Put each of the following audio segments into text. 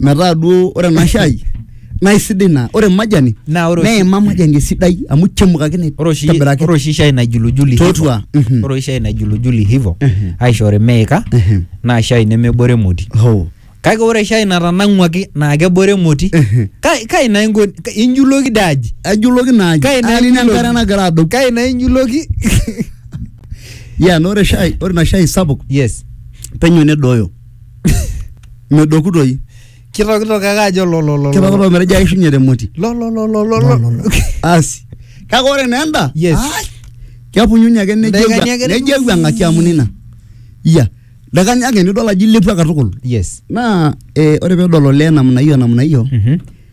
metaa duo ore ena shai naa isidai naa ore majani Naa ore oshi- neima majani esidai amu chemukakine ore oshi aitobiraki. ore oshi shai naijulujuli Totua, hivo. mhm. ore oshi shai naijulujuli hivo Mhm. aishori meika Mhm. naa shai nemebore emoti Hoo. kake ore shai natanang'uaki naa kebore emoti Mhm. Kai- kai naa inko ka- injuloki dee aji ajuloki naa aji. Kai naa Ani ijuloki? enkare nagira adou kai naa injuloki ya na ore shai ore ina shai sapuk yes penyo nedooyo medoku toi kitokitok ake ajo lolololo kitokito metejo aishunye te moti lololololo asi kake ore naa enda Yes. ai, kepunyunye ake nejo Ildakikani ake ewu- nejo ewuang'aki amu nina iya dakani ake nidol ajo ilepua katukul yes naa eh, ore pedol olee namna hiyo namna hiyo Mhm.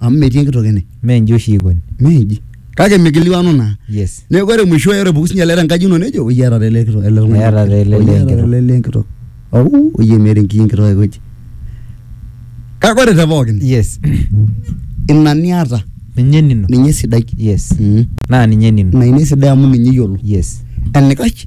amu metii enkitok ene mee nji oshi ikoni meji kake mikiliwanu naa yes neeku ore mwisho ore puku sinye ele tenkaji ino nejo oyie eeta ele kitok ele tung'ani Eeta taa ele Oyie eeta enkitok." ele lee enkitok au oyie meeta enkiyi enkitok aikoji kake ore te pookin yes ina niata ninye nino ninye sidai yes Mm. naa ninye nino ina ina esidai amu ninye iyiolo yes enikash